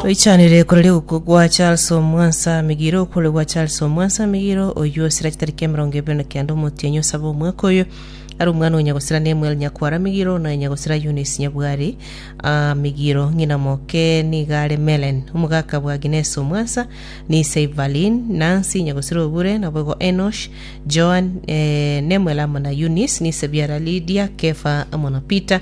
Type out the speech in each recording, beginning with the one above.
Toichanire koreri okwo gwa Charles Omwansa Migiro okore gwa Charles Omwansa Migiro oyio osira chitariki emerongo ebere na kenda omotienyi osaba omweka oyo ari omwana onya gosira Nemuel Nyakwara Migiro na onya gosira Eunice Nyabwari ah, Migiro ng'ina moke niga are Melen omogaka bwa Agnes Omwansa ni ise Evalin Nancy nyagosira Obure nabo igo Enosh Joan eh, Nemuel amo na Eunice ni ise biara Lydia Kefa amo na Peter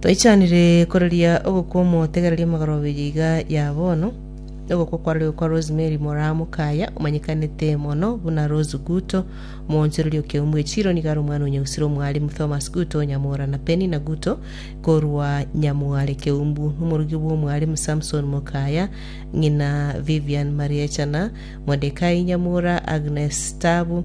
Toichanire koreria ogokwa omotegereria omogorobeyi iga ya bono, ogokwa kware okwa Rosemary moraa mokaya omanyekanete mono buna Rose Guto, omoonchoreria o Keumbu Echiro nigo are omwana o Nyagusiro omwalimu Thomas Guto Nyamura na Penina Guto korwa Nyamware Keumbu, omorugi bw'omwalimu Samson Mokaya, ng'ina Vivian Mariechana, Modekai Nyamura, Agnes Tabu,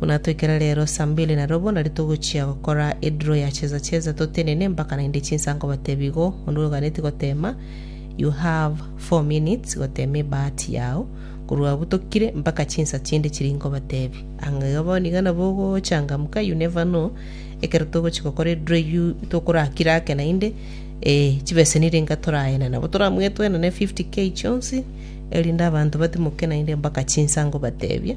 Buna toikire rero saa mbili na robo nari togochia gokora edro ya cheza cheza totenene mpaka naende chinsa nkobatebia igo onde oganetie gotema you have four minutes gotema ebahati yao korwa abwo tokire mpaka chinsa chinde chiri nkobatebia anga iga bono iga nabo ogochangamka you never know ekero togochia gokora edro eyio tokorakire ake naende eh, chibeseni ringa toraene nabo toramwetwenane 50k chionsi erinde abanto batimoke naende mpaka chinsa nkobatebia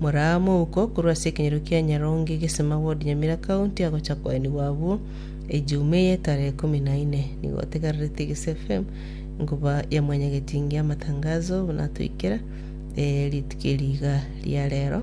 Moraa mouko korwa ase ekenyoro kia Nyaronge egesima ward Nyamira county agocha koenigwa abwo ejumaa eye tarehe ikomi na ine. Nigo otegerere Tigisi FM nkoba ya mwanyagetinge amatangazo buna atoikera ee rituko eri iga ria rero.